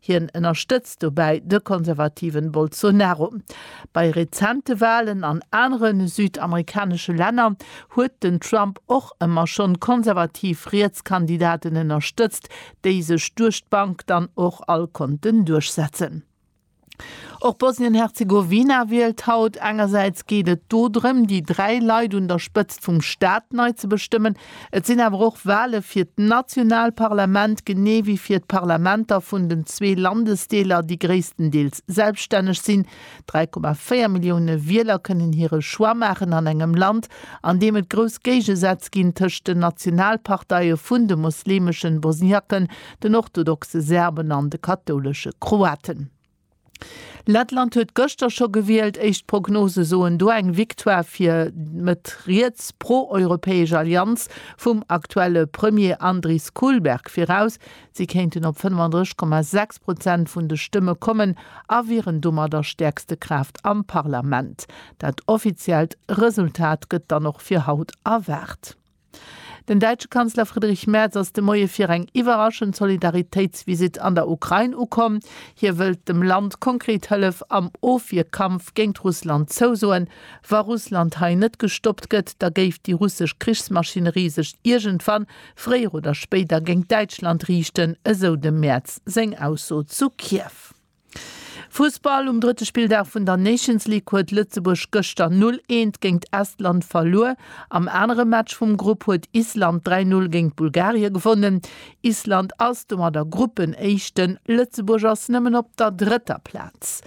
Hien ënnerstëtzt dobäi de konservativen Bolsonaro. Bei rezente Walen an anere südamerikanesche Länner huet den Trump och ëmmer schonn konservativ riets Kandidaten ënnerstëtzt, déi sech duerch d'Bank dann och all konnten duerchsetzen. Och Bosnien-Herzegowina wielt haut. Engersäits geet et do drëm, déi dräi Leit un der Spëtzt vum Staat nei ze bestëmmen, Et sinn awer och Wale fir d'national Parlament, genee wéi fir d'Parlamenter vun den zwee Landesdeeler, déi gréisstendeels selbststänneg sinn. 3,4 Millioune Wieler kënnen hire Choix maachen an engem Land, an deem et grouss Géigesätz ginn tëscht den Nationalparteie vun de mosleemeschen Bosniaken, den orthodoxe Serben an de kathoulesche Kroaten. Lettland huet gëschter scho gewielt. Éischt Prognose soen do eng Victoire fir d'Mëtt riets pro-europäesch Allianz vum aktuelle Premier Andris Kulberg viraus. Si kéinten op 35,6 Prozent vun de Stëmme kommen a wieren domadder stäerkste Kraaft am Parlament. Dat offiziellt Resultat gëtt dann och fir haut erwaart. Den däitsche Kanzler Friedrich Merz ass de Moie fir eng iwwerraschend Solidaritéitsvisitt an der Ukrain ukomm. Hie wëllt dem Land konkret Hëllef am Ofwierkampf géint Russland zousoen. Wa Russland hei net gestoppt gëtt, da géif déi russesch Krichsmaschinerie sech iergendwann, fréier oder spéider, géint Däitschland riichten, esou dem Merz seng Ausso zu Kiew. Fussball, Um drëtte Spilldag vun der Nations League huet Lëtzebuerg gëschter 0, 1 géint Estland verluer. Am anere Match vum Grupp huet Island 3, 0 géint Bulgarie gewonnen. Island ass domadder Gruppenéischten, Lëtzebuerg ass nëmmen op der drëtter Plaz.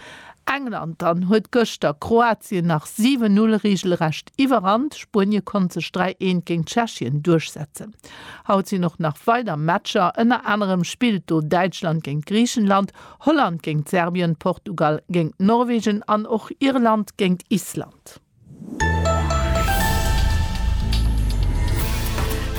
England dann huet gëschter Kroatien nach 7, 0 reegelrecht iwwerrannt. Spuenie konnt sech 3, 1 géint Tschechien duerchsetzen. Haut sinn och nach weider Matcher, ënner anerem spillt do Däitschland géint Griichenland, Holland géint Serbien, Portugal géint Norwegen an och Irland géint Island.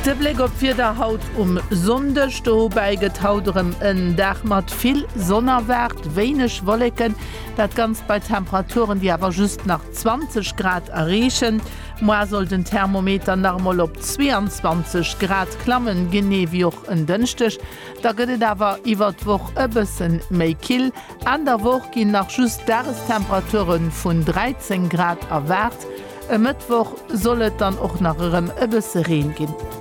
De Bléck op d'Wieder haut um Sonndeg, Dobäi gëtt haut erëm en Dag mat vill Sonn erwaart, wéineg Wolleken, dat Ganzt bei Temperaturen, déi awer just nach 20 Grad erreechen. Muer soll den Thermometer nach emol op 22 Grad klammen, genee wéi och en Dënschdeg. Da gëtt et awer iwwert d'Woch e bësse méi kill. Enn der Woch ginn nach just Dagestemperatuere vun 13 Grad erwaart. E Mëttwoch soll et dann och nach erëm e bësse Reen ginn.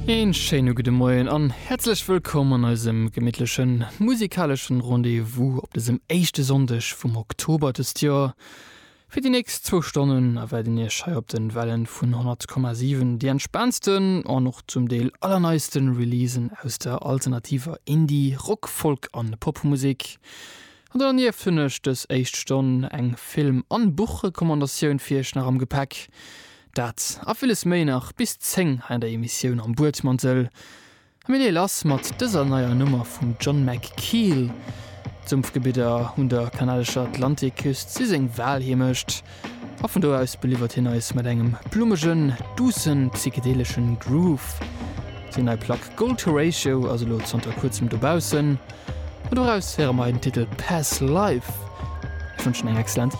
Een schéine gudde Moien an häerzlech wëllkomm an eisem gemittlechen musikaleschen Rendez-vous op dësem éischte Sonndeg vum Oktober dëst Joer. Fir déi nächst zwou Stonnen erwaarden Iech hei op den Wellen vun 100,7 déi entspaantsten an och zum Deel allerneisten Releasen aus der alternativer Indie-, Rock-, Folk an Popmusek. An dernieft hunn ech dës éischt Stonn eng Film an Buchrecommandatioun fir Iech nach am Gepäck. Dat a villes méi nach bis 10 hei an der Emissioun Am Buedmantel. Mir leeë lass mat dëser neier Nummer vum John McKeel. D'Sumpfgebidder un der kanadescher Atlantikküst si seng Walheemecht a vun do aus beliwwert hien eis mat engem blummegen, duussen, psychedeleschen Groove. Seng nei Plack Gold to Ratio ass elo zanter kuerzem dobaussen a doraus héiere mer hei den Titel Past Life. Ech wënschen eng excellent.